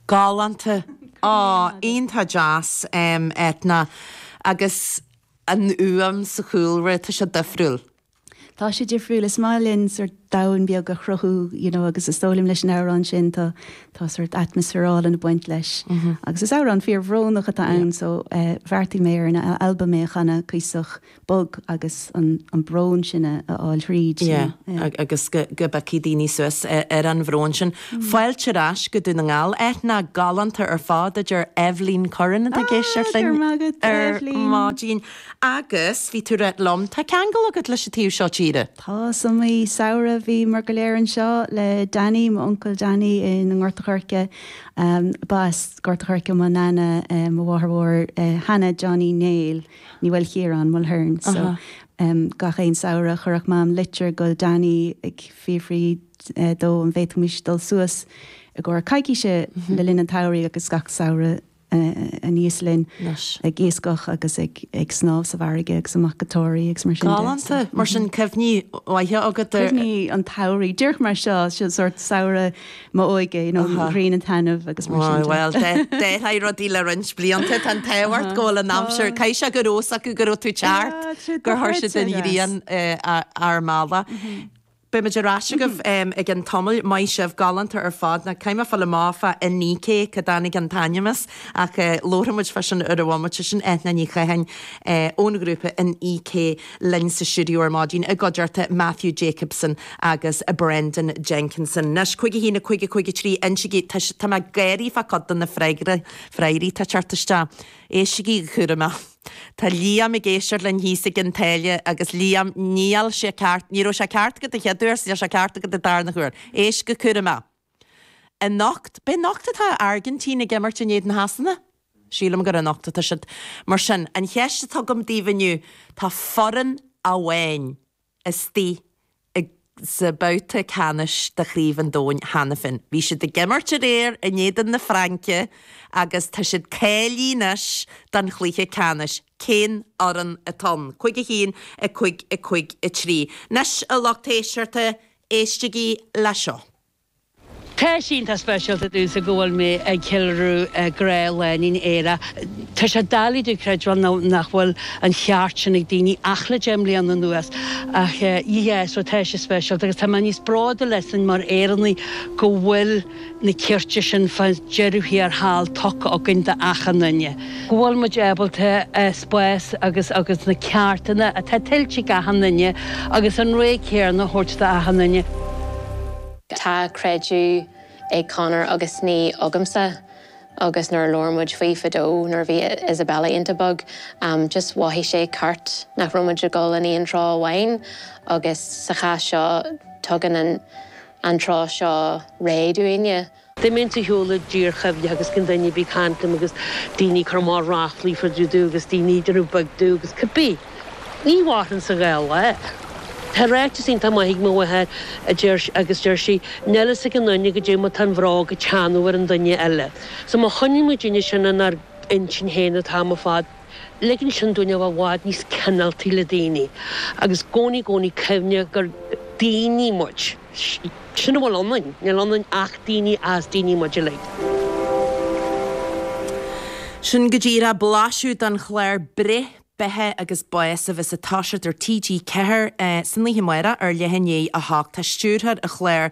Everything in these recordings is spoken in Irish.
Galánta. Á, iontach deas, em, Eithne. Agus an fhuaim sa chúlra, tá sé difriúil. Tá sé difriúil. Is maith linn sórt domhan beag a chruthú, you know, agus is dóigh liom leis an amhrán sin tá, tá sórt atmaisféar álainn ag baint leis. Agus is amhrán fíor bhrónach atá ann so, eh, bheartaigh mé ar an albam é a chanadh cuíosach bog agus an brón sin a fháil thríd. Yeah agus go bpiocfaidh daoine suas ar an bhrón sin. Fáilte ar ais go Dún na nGall. Eithne galánta ar fad a deir Eibhlín Curran atá i gcéist linn ar maidin. Agus bhí tú ag ráit liom, tá ceangal agat leis an taobh seo tíre? Tá, sa mhí samhraidh bhíomar go léir anseo le Danny, m'uncail Danny i nGort a' Choirce. Ba as Gort a' Choirce mo Nana, mo mháthair mhór Hannah Johnny Néill. Ní Mhaoilchiaráin, Mulhern so ehm gach aon samhradh chuirfeadh Mam litir go Danny ag fiafraí de an bhféadfaimis dul suas i gcomhair coicíse le linn an tsamhraidh agus gach samhradh aníos linn ag iascach agus ag ag snámh sa bhfarraige agus amach go Toraí agus mar sin de. Galánta! Mar sin cuimhní mhaithe agat air. Cuimhní an tsamhraidh. Díreach mar seo, sórt samhradh m'óige, you know, grian ag taitneamh agus mar sin de. Bhuel, d'athraigh rudaí le roinnt blianta, tá an t-ádh ort go bhfuil an aimsir, caithfidh sé go raibh a fhios acu go raibh tú ag teacht, gur chuir siad an ghrian ar fáil. Beidh muid ar ais agaibh i gceann tamaill, maith sibh, galánta ar fad, nó caithfidh mé fáil amach fá Inni-K cá dtáinig an t-ainm as, ach labharfaidh muid fá sin ar ball bomaite, sin Eithne Ní Chatháin ón ghrúpa Inni-K. linn sa stiúideo ar maidin i gcuideachta Matthew Jacobson agus Brendan Jenkinson. Anois, Cúig a haon, a cúig, a cúig a trí, anois, tá mé ag gáirí fá cuid de na freagraí atá ag teacht isteach. Éistigí, go cúramach. Tá Liam ag éisteacht linn thíos ag an Dáil agus Liam, níl sé ceart, ní raibh sé ceart agat an chéad uair, níl sé ceart agat an darna huair. Éist go cúramach. Anocht, an anocht atá an Airgintín ag imirt in éadan Shasana. Sílim gur anocht atá siad. Mar sin, an cheist atá agam daoibh inniu, tá foireann amháin istigh i, sa babhta ceannais de Chraobh an Domhain cheana féin. Bhí siad ag imirt aréir in éadan na Fraince agus tá siad cáilithe anois don chluiche ceannais. Cén fhoireann atá ann? Cúig a haon, a cúig, a cúig a trí. Anois, a lucht éisteachta, Éistigí le seo. Tá sé iontach speisialta domhsa go bhfuil mé ag ceiliúradh grá lánúin aerach. Tá sé doiligh domh a chreidbheáil nach bhfuil an ceart sin ag daoine ach le deich mbliana anuas ach yeah so tá sé speisialta agus tá mé níos bródúla asainn mar Éireannaigh go bhfuil na cirte sin fá dheireadh thiar thall tugtha againn do achan duine, go bhfuil muid ábalta an spás agus agus na cearta atá tuillte ag achan duine agus an ré céarna a thabhairt do achan duine. Tá creideamh ag Conor agus níl agamsa agus nuair a labhair muid faoi fadó nuair a bhí Isabella iontach beag just mhothaigh sé ceart nach raibh muid ag dul in aon treo amháin agus sa chás seo tugann an an treo seo ré dúinne. D'imigh an tshiúl i dtír chuimhne agus cinn duine a bhí ag caint liom agus daoine ag cur amach ráflaí faoi Dudu agus daoine idir nó beag dubh agus cipí. Ní mhaitheann sa ghaoth é. Tá ráiteas iontach maith ag mo mháthair a deir agus deir sí, níl a fhios ag an nduine goidé mar tá an bhróg ag teannadh ar an nduine eile. So má choinníonn muidinne sin inár intinn féin an t-am ar fad. Ligeann sin dúinn a bheith i bhfad níos cineáltaí le daoine agus i gcónaí i gcónaí cuimhne gur daoine muid. Sin a bhfuil ionainn. Níl ionainn ach daoine, is daoine muid uilig. Sin go díreach blaiseadh den chlár Breith, Beatha agus Bás a bheas ag toiseacht ar TG4 san oíche amárach ar leath i ndiaidh a hocht. Tá stiúrthóir an chláir,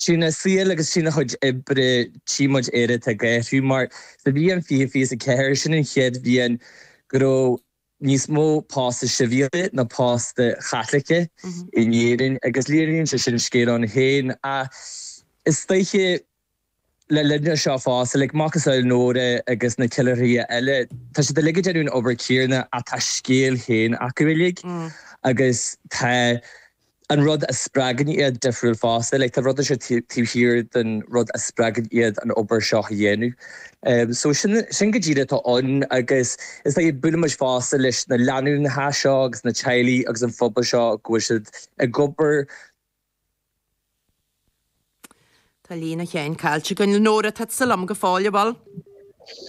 Trína saol agus trína chuid oibre tchí muid Éire atá ag athrú. Mar sa bhliain fiche fiche is a ceathair, sin an chéad bhliain go raibh níos mó póstaí sibhialta ná póstaí Caitliceacha in Éirinn. Agus léiríonn sé sin scéal ann féin. Ach is dóiche. Le linn dó seo fosta like, macasamhail Nóra agus na ceiliúraithe eile, tá siad uilig ag déanamh an obair céarna ach tá a scéal féin acu uilig agus tá an rud a spreagann iad difriúil fosta. Like, tá rud inteacht taobh thiar den rud a spreagann iad an obair seo a dhéanamh. So, sin, sin go díreach atá ann agus is ea, buailimid fosta leis na lánúineacha seo agus na teaghlaigh agus an pobal seo go bhfuil siad ag obair, Tá líne amháin caillte againn le Nóra, tá tusa liom go fóill, a Mhol.